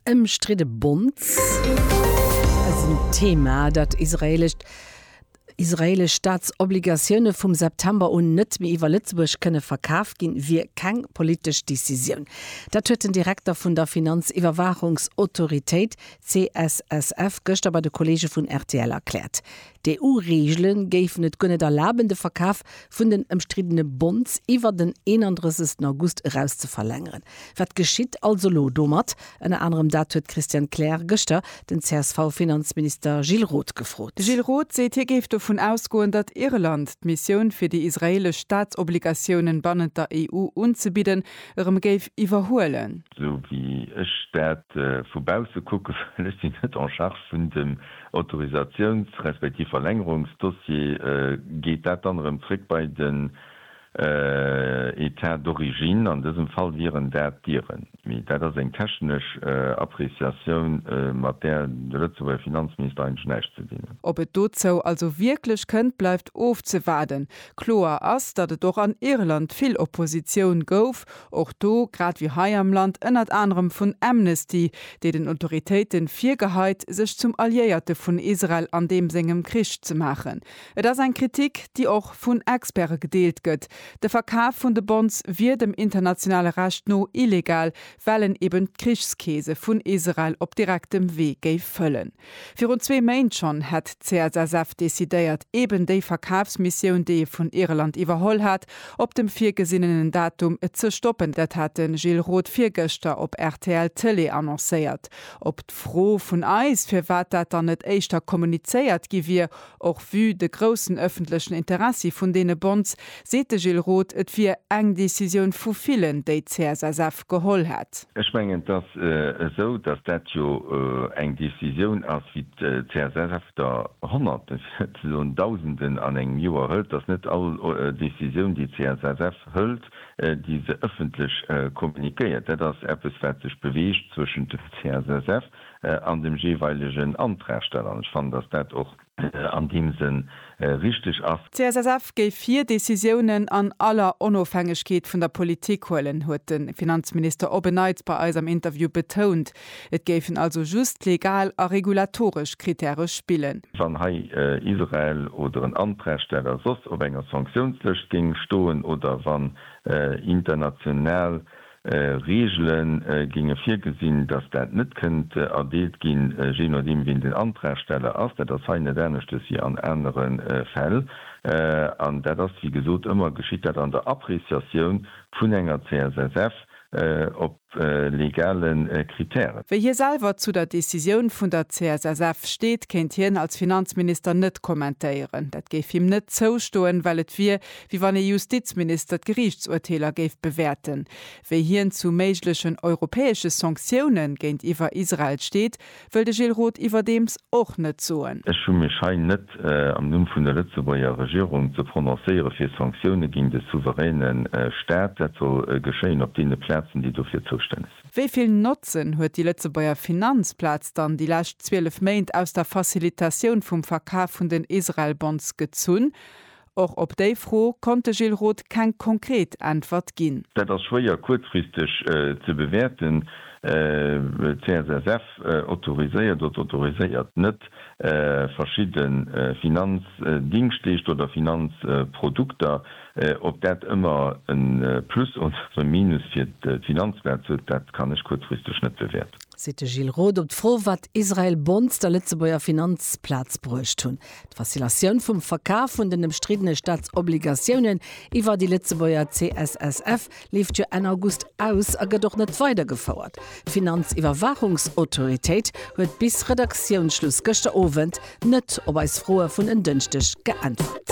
Ëmstridde Bonds ass en Thema, dat israeelescht israeelesch Staatsobligatioune vum September un net méi iwwer Lëtzebuerg kënne verkaf ginn, wier keng politesch Decisioun. Dat huet den Direkter vun der Finanziwwerwaachungsautoritéit, CSSF, gëschter bei de Kolleege vun rtl erkläert. D'EU-Reegele géifen et guer net erlaben, de Verkaf vun den ëmstriddene Bonds iwwer den 31 August eraus ze verlängeren. Wat geschitt also elo domat? Ënner anerem dat huet d'Christiane Kleer gëschter den CSV-Finanzminister Gilles Roth gefrot. De Gilles Roth seet, hie géif dovun ausgoen, datt Irland d'Missioun, fir déi israeelesch Staatsobligatiounen bannent der EU unzebidden, erëm géif iwwerhuelen. Esou wéi ech dat vu bausse kucken, well ech sinn net en charge vun dem Autorisatiouns respektiv Verlängerungsdossier, geet dat dann erëm zréck bei den État d'origine. An dësem Fall wieren dat d'Iren. Mee dat ass eng technesch Appréciatioun, mat där de Lëtzebuerger Finanzminister eigentlech näischt ze dinn huet. Ob et dozou also wierklech kënnt, bleift ofzewaarden. Kloer ass, datt et och an Irland vill Oppositioun gouf, Och do, grad wéi hei am Land, ënnert anerem vun Amnesty, déi den Autoritéite virgeheit, sech zum Alliéierte vun Israel an deem sengem Krich ze maachen. Et ass eng Kritik, déi och vun Experte gedeelt gëtt. De Verkaf vun de Bonds wier dem internationale Recht no illegal, well en eben d'Krichskeese vun Israel op direktem Wee géif fëllen. Virun zwee Méint schonn hätt d'CSSF decidéiert, eben déi Verkafsmissioun, déi ee vun Irland iwwerholl hat, op dem virgesinnenen Datum ze stoppen. Dat hat de Gilles Roth virgëschter op rtl Tëlee annoncéiert. Op d'Fro vun eis, firwat dat dann net éischter kommunizéiert gi wier, Och vue de groussen ëffentlechen Interessi vun deene Bonds, seet de Gilles Roth, et wier eng Decisioun vu villen, déi d'CSSF geholl hätt. Ech mengen, et ass esou, datt dat jo eng Decisioun ass, wéi d'CSSF der Honnerten, fir net ze soen Dausenden an engem Joer hëlt. Et ass net all Decisioun, déi d'CSSF hëlt, déi se ëffentlech kommuniquéiert. Dat ass eppes, wat sech beweegt zwëschent dem CSSF an dem jeeweilegen Antragsteller. An ech fannen, dass dat och an deem Sënn richtig ass. D'CSSF géif hir Decisiounen an aller Onofhängegkeet vun der Politik huelen, huet de Finanzminister op en Neits bei eis am Interview betount. Et géifen also just legal a regulatoresch Krittäre spillen. Wann hei Israel oder en Antragsteller soss op enger Sanktiounslëscht géing stoen oder wann international Reegele géinge virgesinn, datt dat net kënnt erdeelt ginn, jee nodeem wien den Antragsteller ass. Dat ass hei net aneschters wéi an anere Fäll. An dat ass, wéi gesot, ëmmer geschitt dat an der Appreciatioun vun enger CSSF op legale Kritären. Wéi hie selwer zu der Decisioun vun der CSSF steet, kéint hien als Finanzminister net kommentéieren. Dat géif him net zoustoen, well et wier, wéi wann ee Justizminister d'Geriichtsurteeler géif bewäerten, wéi hien zu méiglechen europäesche Sanktioune géintiwwer Israel steet, wëll de Gilles Roth iwwerdeems och net soen. Ech hu mech hei net am Numm vun der Lëtzebuerger Regierung ze prononcéiere fir Sanktioune géint e souveräne Staat. Dat soll geschéien op deene Plazen, déi dofir zoustänneg sinn. Wéi vill Notzen huet déi Lëtzebuerger Finanzplaz dann déi lescht 12 Méint aus der Facilitatioun vum Verkaf vun den Israel-Bonds gezunn? Och op déi Fro konnt de Gilles Roth keng konkret Äntwert ginn. Dat ass schwéier kuerzfristeg ze bewäerten. D'CSSF autoriséiert oder autoriséiert net verschidde Finanzdingschteeschter oder Finanzprodukter. Ob dat ëmmer e Plus oder e Minus fir d'Finanzplaz huet, dat kann ech kuerzfristeg net bewäerten. Seet de Gilles Roth op d'Fro, wat Israel Bonds der Lëtzebuerger Finanzplaz bruecht hunn. D'Fascinatioun vum Verkaf vun den ëmstriddene Staatsobligatiounen iwwer déi Lëtzebuerger CSSF leeft jo Enn August aus a gëtt och net weidergefouert. D'Finanziwwerwaachungsautoritéit huet bis Redaktiounsschluss gëschter Owend net op eis Froe vun en Dënschdeg geäntwert.